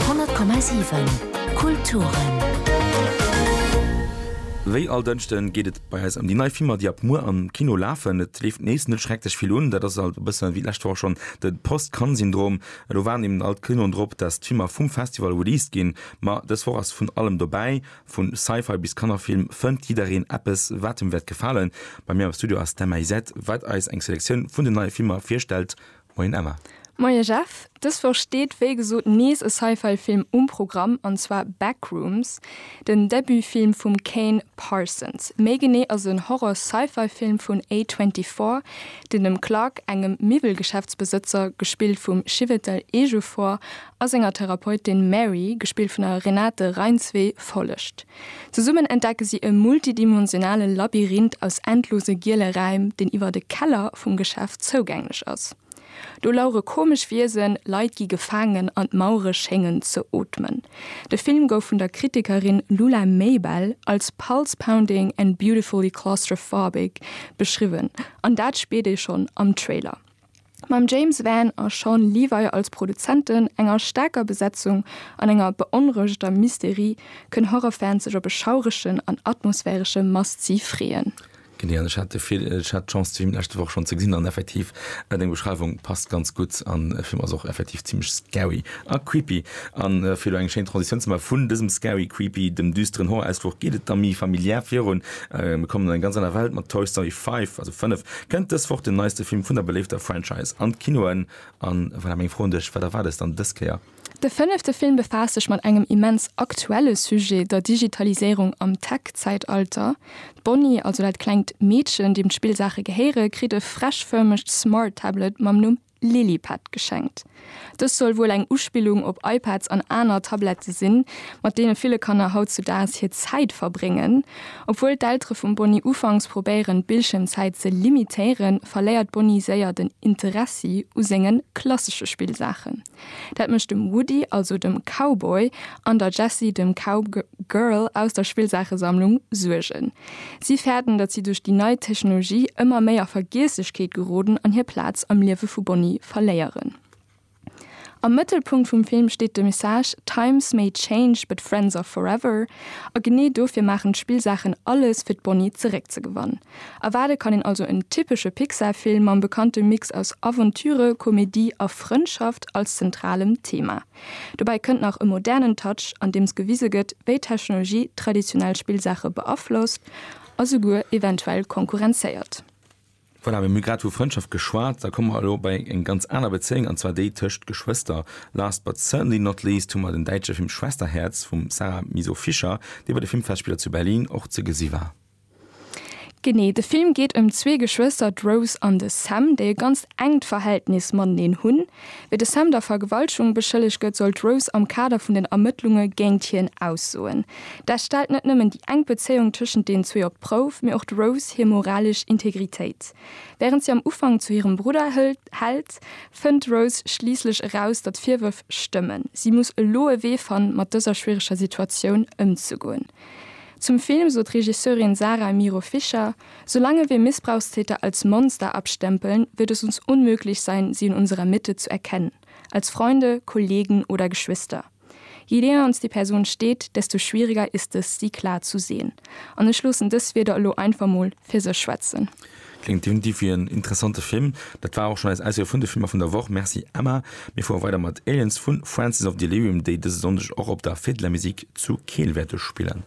100,7 Kulturen. Wéi all Dënschde geet et bei eis ëm déi nei Filmer, déi ab muer am Kino lafen. Et leeft nees net schrecklech vill un. Dat ass alt e bësse wéi d'lescht Woch schonn de Post-Cannes-Syndrom. Elo waarden eben all d'Kinoen drop, datt d'Filmer vum Festival released ginn. Ma dës Woch ass vun allem dobäi. Vu Sci-Fi bis Kannerfilm fënnt jiddereen eppes, wat him wäert gefalen. Bei mir am Studio ass d'Emma Isett, wat eis eng Selektioun vun den neie Filmer virstellt. Moien Emma. Moie Jeff. Dës Woch steet wéi gesot nees e Sci-Fi Film um Programm, an zwar Backrooms, den Debutfilm vum Kane Parsons. Méi genee ass en Horror-Sci-Fi Film vun A24, deen dem Clark, engem Miwwelgeschäftsbesëtzer, gespillt vum Chiwetel Ejiofor, a senger Therapeutin Mary, gespillt vun der Renate Reinsve, follegt. Zesummen entdecke si e multidimensionale Labyrinth aus endlose giele Räim, deen iwwert e Keller vum Geschäft zougänglech ass. Do lauere komesch Wiesen, Leit gi gefaangen an d'Mauere schéngen ze ootmen. De Film gouf vun der Kritikerin Lula Maybell als pulse-pounding and beautifully claustrophobic beschriwwen, an dat spiert ee schonn am Trailer. mam James Van a Shawn Levy als Produzenten, enger staarker Besetzung an enger beonrouegeter Mysterie, kënn Horrorfans sech op e schauregen an atmosphäresche Must-See freeën. Genee, an ech hat de vill, ech hat d'Chance de Film leschte Woch schonn ze gesinn an effektiv, deng Beschreiwung passt ganz gutt an de Film ass och effektiv zimlech scary a creepy. An fir elo eng schéin Transitioun ze maachen vun dësem scary, creepy, dem düsteren Horror-Ausfluch geet et da méi familiär virun. Mir kommen an eng ganz aner Welt mat Toy Story 5, also 5. Kënnt dës Woch den neiste Film vun der beléifter Franchise an d'Kinoen? A voilà meng Fro un dech, Wat erwaart dës dann dës Kéier? De fënnefte Film befaasst sech mat engem immens aktuelle Sujet, der Digitaliséierung am Tech-Zäitalter. D'Bonnie, also dat klengt Meedchen, deem d'Spillsaache gehéiere, kritt e freshförmegt Smart-Tablet mam Numm Lilipad geschenkt. Dës soll wuel eng Uspillung op iPads an aner Tablette sinn, mat deene ville Kanner hautzudaags hir Zäit verbréngen. Obwuel d'Eltere vum Bonnie ufanks probéieren, d'Bildschiermzäit ze limitéieren, verléiert d'Bonnie séier den Interessi u senge klassesche Spillsaachen. Dat mécht dem Woody, also dem Cowboy, an der Jessie, dem Cowgirl, aus der Spillsaachesammlung Suergen. Si fäerten, datt si duerch déi nei Technologie ëmmer méi a Vergiesslechkeet geroden an hir Plaz am Liewe vu Bonnie verléieren. Am Mëttelpunkt vum Film steet de Message Times may change, but friends are forever. A genee dofir maachen d'Spillsaachen alles, fir d'Bonnie zeréckzegewann. Erwaarde kann een also en typesche Pixar-Film mam bekannte Mix aus Aventüre, Komedie a Frëndschaft als zentralem Thema. Dobäi kënnt nach e modernen Touch, andeems gewise gëtt, wéi d'Technologie traditionell Spillsaache beaflosst a souguer eventuell konkurrenzéiert. Voilà, mir hu grad vu Frëndschaft geschwat, da komme mer elo bei eng ganz aner Bezéiung, an zwar déi tëscht Geschwëster. Last but certainly not least hu mer den däitsche Film Schwesterherz vum Sarah Miso-Fischer, dee bei de Filmfestspiller zu Berlin och ze gesi war. Genee, de Film geet ëm zwee Geschwëster, d'Rose an de Sam, déi e ganzt enkt Verhältnis mateneen hunn. Wéi de Sam der Vergewaltegung beschëllegt gëtt, soll d'Rose am Kader vun den Ermëttlunge géint hien aussoen. Dat stellt net nëmmen déi enk Bezéiung tëschent deenen zwee op d'Prouf, mee och d'Rose hir moralesch Integritéit. Wärend si am Ufank zu hirem Brudder hält, fënnt d'Rose schliisslech eraus, datt d'Virwërf stëmmen. Si muss elo e Wee fannen, mat dëser schwiereger Situatioun ëmzegoen. Zum Film sot d'Regisseurin Sara Miro Fischer, Solange wir Missbrauchstäter als Monster abstempeln, wird es uns unmöglich sein, sie in unserer Mitte zu erkennen, als Freunde, Kollegen oder Geschwister. Je näher uns die Person steht, desto schwieriger ist es, sie klar zu sehen. An ech loossen dës Wierder elo einfach mol fir sech schwätzen. Klingt definitiv wéi en interessante Film. Dat war och schonn eis Auswiel vun de Filmer vun der Woch. Merci Emma. Mir fuere weider mat Aliens vu Francis of Delirium, déi dëse Sonndeg och op der Fête de la Musique zu Keel wäerte spillen.